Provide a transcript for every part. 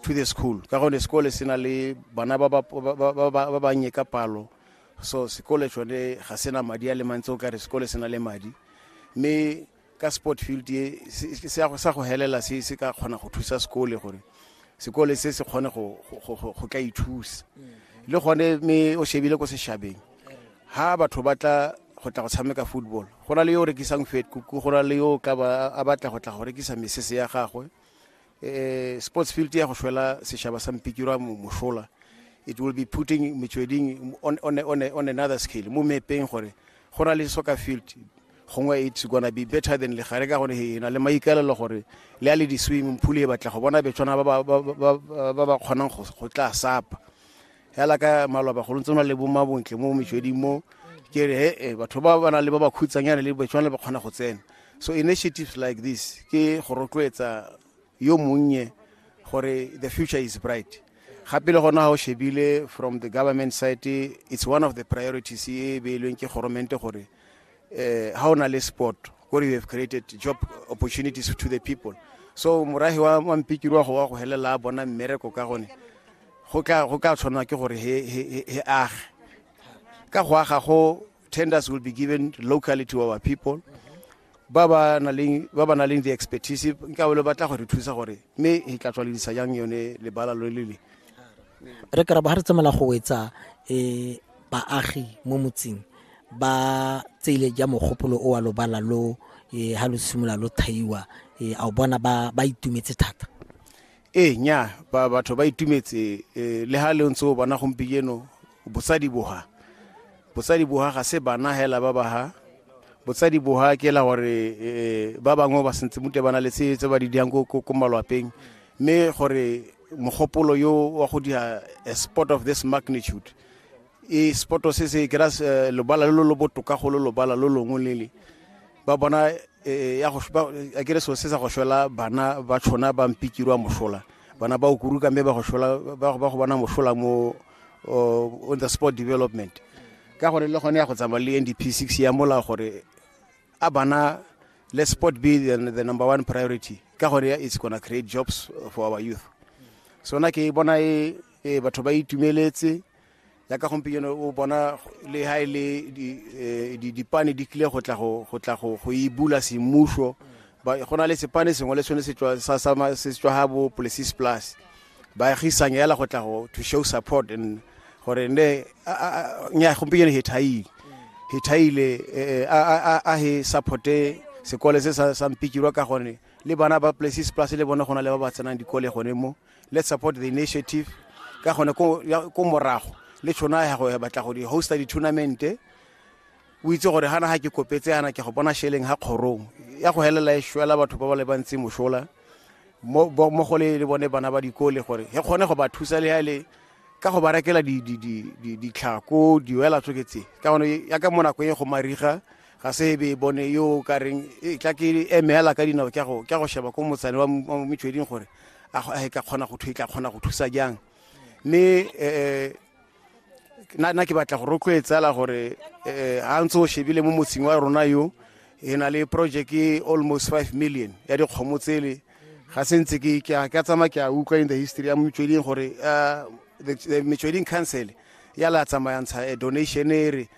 to the school ka gone sekole se na le bana ba bannye ka palo so sekole tsone ga se na madi a le mantsi o ka re sekole se na le madi mme ka sport field e sa go helela se se ka kgona go thusa sekole gore sekole se se kgone go ka ithusa le gone mme o shebile ko sešhabeng ha batho ba tla go tla go tshameka football go na le yo o rekisang fetkuku go na le yo o tla a batla go tla go rekisa mesese ya gagwe eh, sports field ya go shwela seshaba sa mpikirwa mosola it will be putting metsweding on, on, on, on another scale mo mepeng gore go na le soccer field gongwe it's gonna be better than legare ka gore e na le maikalelo gore le a le di-swimming pool e batla go bona betshwana ba ba kgonang go tla sapa hela ka maloba go ntse le bo mabontle mo mešweding mo ke re he e batho ba ba nang le ba ba khutsanyana le batshwana le ba kgona go tsena so initiatives like this ke go rotloetsa yo monnye gore the future is bright gape le gona ga o shebile from the government side it's one of the priorities e beilweng ke goromente gore eh, ha o na le sport gore you have created job opportunities to the people so morahi wa mampikirwa go wa go helela a bona mmereko ka gone go ka tshwanwa ke gore he age ka go aga go tenders will be given locally to our people ba ba na leng the expertise nka bole batla gore thusa gore mme e tla tswaledisa jang yone lebala lo le le re kry ba ga re tsamela go wetsa um baagi mo motseng ba tseile ja mogopolo o wa lobala lo eh, ha lo simolola lo thaiwa eh, a o bona ba ba itumetse thata ee nya ba batho ba itumetse eh, le ha le ntse o bona gompieno bosadi boha bosadi boha ga se bana hela ba ba ha botsadi boha ke la gore eh, ba bangwe ba sentse mute bana le tse tse ba di diang ko- ko ko malwapeng mme gore mogopolo yo wa go dira a sport of this magnitude e sport se se kera eh, lobala lo lo botoka go lo lobala lo longwe lele ba bona eh, ya go a kere so se sa go shwela bana ba tshona ba mpikirwa mosola bana ba o kuruka mme ba go shwela ba go bona mosola mo oh, on the sport development ka gore le gone ya go tsamaya le ndp six ya mola gore a bana let sport be the, the number one priority ka gore it's gonna create jobs for our youth so na ke bona e ee batho ba itumeletse yaka gompieno o bona le ha e le eh, dipane di tlile go tla go e bula semmuso go na le sepane sengwe le sone se tswa ga bo policies plus baagisang yala go tla go to show support and gore ne nya gompieno he thaile he thaile eh, eh, a he supporte sekole se sa mpikirwa ka gone le bana ba places plus le bona go na le ba ba tsenang dikole gone mo let's support the initiative ka gone ko morago le tšhono ya go batla go di-hosta di-tournamente o itse gore gana ga ke kopetse yana ke go bona sheleng ga kgorong ya go helela e shwela batho ba ba le bantsi mošola mo go le le bone bana ba dikole gore e kgone go ba thusa le ya le ka go ba rekela ditlhako diwela tsoketse ka gone ya ka mo nako e go mariga ga se ebe e bone yo o ka reng e tla ke eme hela ka dinao ke go sheba ko motsane wa metsweding gore a ka kgona go thusa kgona go thusa jang mme eh, eh, na ke batla go rotloetsela gore eh, ga ntse o shebile mo motseng wa rona yo e na le project e almost five million ya dikgomo tsele ga se ntse ke ka tsamaya ke a utlwa in the history ya metsweding gore metsweding council ya la tsamayantsha donation e re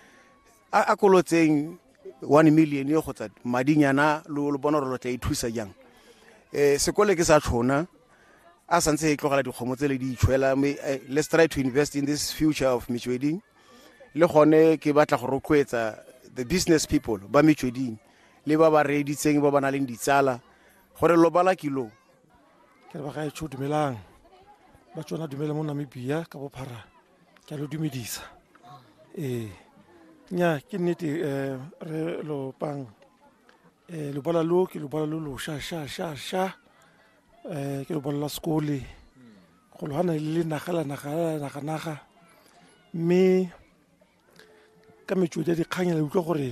a a kolotseng one million yo kgotsa madinyana lo lo bona gore lo tla ithusa jang um sekole ke sa tlhona a santse e tlogela dikgomo tse le di itshwela mme eh, let's try to invest in this future of metsweding le gone ke batla go rotloetsa the business people ba metsweding le ba ba reeditseng ba ba na leng ditsala gore lo bala kilo ke re ba gaetsho dumelang ba tsona dumele mo namibia ka bophara ke a lo dumedisa ee nya ke nnete um re lopang um lobola lo ke lobola lo losha sha sha sha um ke lobola la sekole go logana le le naga la naga la naga naga mme ka metswedi ya dikgang ya la utlwa gore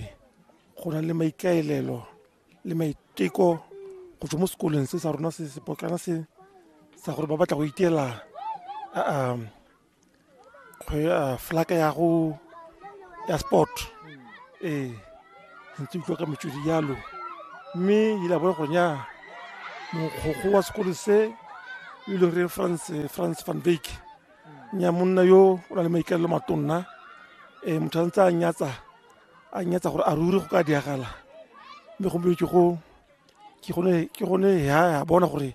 go na le maikaelelo le maiteko go tswa mo sekolong se sa rona se sepotlana se sa gore ba batla go iteela flaka ya go ya sport ee ntse utlwa ka metswedi jalo mme ile a bona gore nya mokgogo wa sekolo se e leng re france france van vak nya monna yo o na le maikaelelo matonna um motho a ntse a nyatsa a nyatsa gore a ruri go ka diragala mme gompieno ke go ke gone ke gone ya ya bona gore